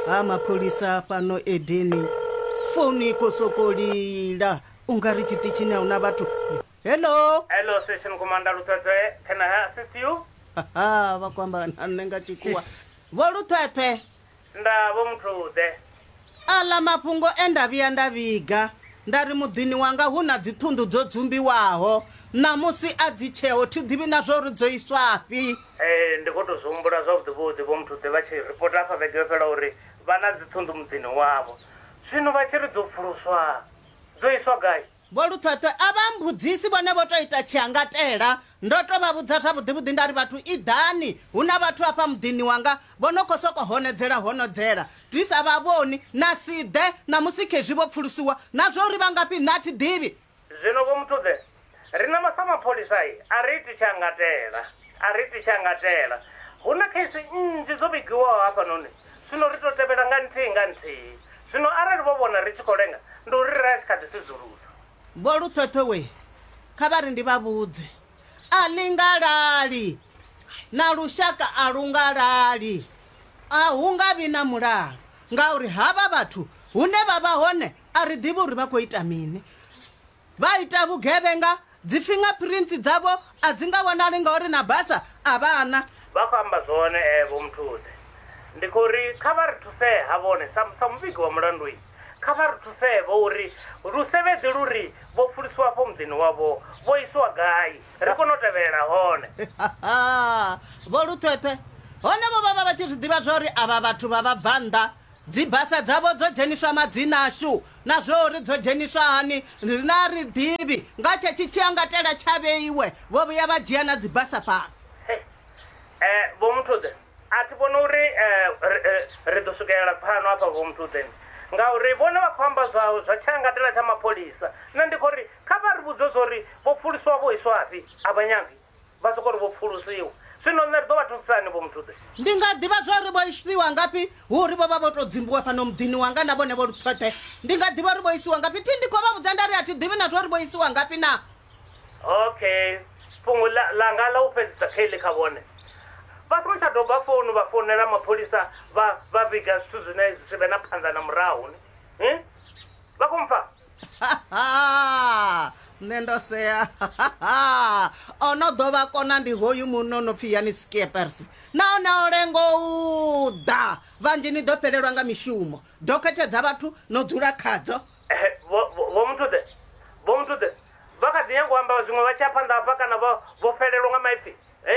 ha mapholisa fhano edeni founu i khou sokou lila u nga ri tshiṱitshini a hu na vhathu hello Hello, Station Commander Luthwethwe. Can I assist you? haha vha khou amba na nṋe nga tshikhuwa vho luthwethwe Nda vho muthu ḓe. Aḽa mafhungo e nda vhuya nda vhiga nda ri muḓini wanga hu na dziṱhunḓu dzo dzumbiwaho, ṋamusi a dzi tsheho, thi ḓivhi na zwa uri dzo iswafhi. Ee, ndi khou tou zwi humbula zwavhuḓivhuḓi, Vho Muthuḓe vha tshi ripota hafha vhege yo fhelaho uri vha na dziṱhunḓu muḓini wavho. Zwino vha tshi ri dzo pfuluswa, dzo iswa gai? Vho Luṱhweṱhwe a vha mmbudzisi vhone vho tou ita tshiangatela. Ndo tou vha vhudza zwavhuḓivhuḓi nda ri, Vhathu iḓani, hu na vhathu afha muḓini wanga vho no khou sokou honodzela honodzela. Dwi sa vha vhoni, na si ḓe ṋamusi khezwi vho pfulusiwa. Na zwa uri vha ngafhi nṋe a thi ḓivhi. Zwino Vho Muthuḓe, riṋe sa mapholisa a ri iti tshiangatela, a ri iti tshiangatela. Hu na kheisi nnzhi dzo vhigiwaho hafhanoni. Zwino ri tou tevhela nga nthihi nga nthihi. Zwino arali vho vhona ri tshi khou lenga, ndi uri ri a tshi kha ḓi sudzulusa. Vho Luthotho we kha vha ri ndi vha vhudze, a ḽi nga lali, na lushaka a lu nga lali. A hu nga vhi na mulalo ngauri havha vhathu hune vha vha hone a ri ḓivhi uri vha khou ita mini. vha ita vhugevhenga dzi fingerprints dzavho a dzi nga wanali ngauri na basa a vha na. Vha khou amba zwone ee Vho Mthuse. Ndi khou ri kha vha ri thusee ha vhone sa sa muvhigi wa mulandu i, kha vha ri thusee vho uri lusevhedzi lu ri vho pfulisiwa afho muḓini wavho vho isiwa gai ri kone u tevhelela hone. Vho Luṱhweṱhwe, Hone vho vha vha vha tshi zwi ḓivha zwa uri avha vhathu vha vhabvannḓa Dzibasa dzavho dzo dzheniswa madzina ashu, na zwa uri dzo dzheniswa hani riṋe a ri ḓivhi. Nga tshetsho tshiangatela tsha vheiwe, vho vhuya vha dzhia na dzibasa fhano. Hei, Vho Muthuḓe, a thi vhoni uri ri ḓo swikelela pfano hafha, Vho Muthuḓe, ngauri vhone vha khou amba zwa zwa tshiangatela tsha mapholisa. Nṋe ndi khou ri kha vha ri vhudze zwa uri vho pfuluswa vho iswafhi, a vha nyagi. vha soko ri vho pfulusiwa zwino nṋe ri ḓo vha thusisani vho muthuḓe ndi nga ḓivha zwa uri vho isiwa ngafhi hu uri vho vha vho tou dzimbiwa fhano muḓini wanga na vhone vho luṱhoṱhe ndi nga ḓivha uri vho isiwa ngafhi thi ndi khou vha vhudza nda ri a thi ḓivhi na zwa uri vho isiwa ngafhi na okay fhungo ḽa- ḽanga ḽa u fhedzisa kheḽi kha vhone vha songo tsha doba founu vha founela mapholisa vha vha vhiga zwithu zwine zwi si vhe na phanḓa na murahu ni Hmm? vha khou mpfa nṋe ndo sea o no ḓo vha kona ndi hoyu muno no pfhi yani skiepers nahone o lengo u ḓa vhanzhi ni ḓo fhelelwa nga mishumo dokhethe dza vhathu no dzula khadzo Ehe, vho vho- vho muthuḓe vho muthuḓe vha kha ḓi nyanga u amba zwiṅwe vha tshi ya phanḓa hafha kana vho vho fhelelwa nga maipfi e